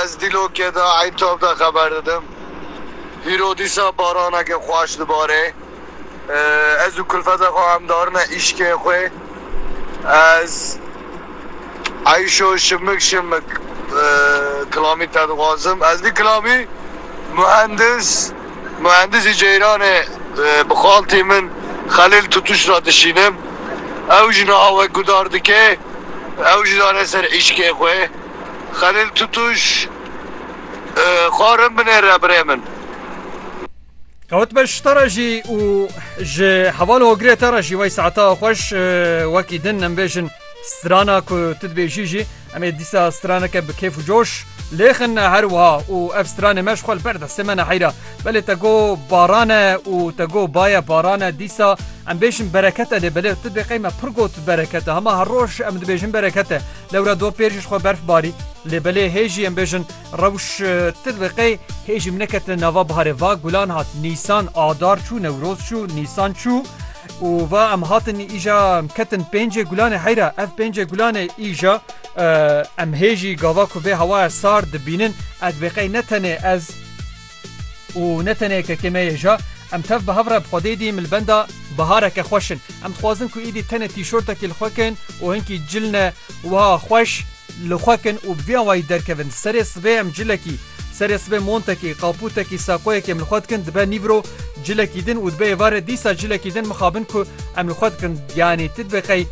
Ez dîlokê de Eytob de xeber didim. Hîro dîsa baranekê xweş dibarê. Ez û kulfetê xwe em darine îşkê xwe. Ez Eyşo şimik şimik kilamî te dixwazim. Ez vî kilamî muhendis. Muhendisî Ceyranê bi xaltî min Xelîl Tutuş re dişînim. Ew ji niha wek gudar dike, ew jî dane ser îşkê xwe. Xelîl Tutuş, Xwarin binê re birê min. Qewitme ji te re jî û ji heval hogirê te re jî wey saeta xweş. Wekî din em bêjin strana ku tu dibêjî jî. Em ê dîsa straneke bi kêf û coş lêxin ne her wiha û ev stranê me ji xwe li ber destê me neheyra. Belê te got baran e û te got baye baran e dîsa em bêjin bereket e lê belê tu bêqey me pir got bereket e hema her roj em dibêjin bereket e lewra do pêr jî ji xwe berf barî lê belê hê jî em bêjin rewş tu dibêqey hê jî min neketine nava biharê va gulan hat nîsan adar çû newroz çû nîsan çû Û va em hatin îja em ketin pêncê gulanê heyra ev pêncê gulanê îja em hêjî gava ku vê hewaya sar dibînin ed bêqey ne tenê ez û ne tenê kekê me yêja em tev bi hev re bi xwedê dî milbenda bihareke xweşin em dixwazin ku îdî tenê tîşortekî li xwekin û hinkî cilne wiha xweş Li xwe kin û bi vî awayî derkevin. Serê sibê em cilekî, serê sibê montekî, qaputekî, saqoyekî em li xwe dikin dibe nîvro cilekî din û dibe êvarê dîsa cilekî din mixabin ku em li xwe dikin yanî ti dibe qey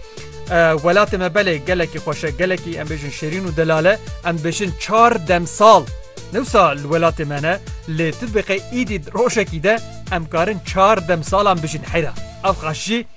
welatê me belê gelekî xweş e, gelekî em bêjin şêrîn û delal e, em dibêjin çar demsal ne wisa li welatê me ne lê ti dibe qey îdî rojekî de em karin çar demsalan bijîn heyra ev xweş jî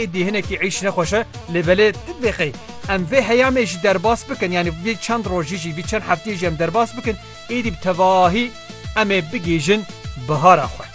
Êdî hinekî êş nexweş e lê belê tu dibê qey em vê heyamê jî derbas bikin yanî vê çend rojî jî vî çend hefteyê jî em derbas bikin êdî bi tevahî em ê bigihîjin bihara xwe.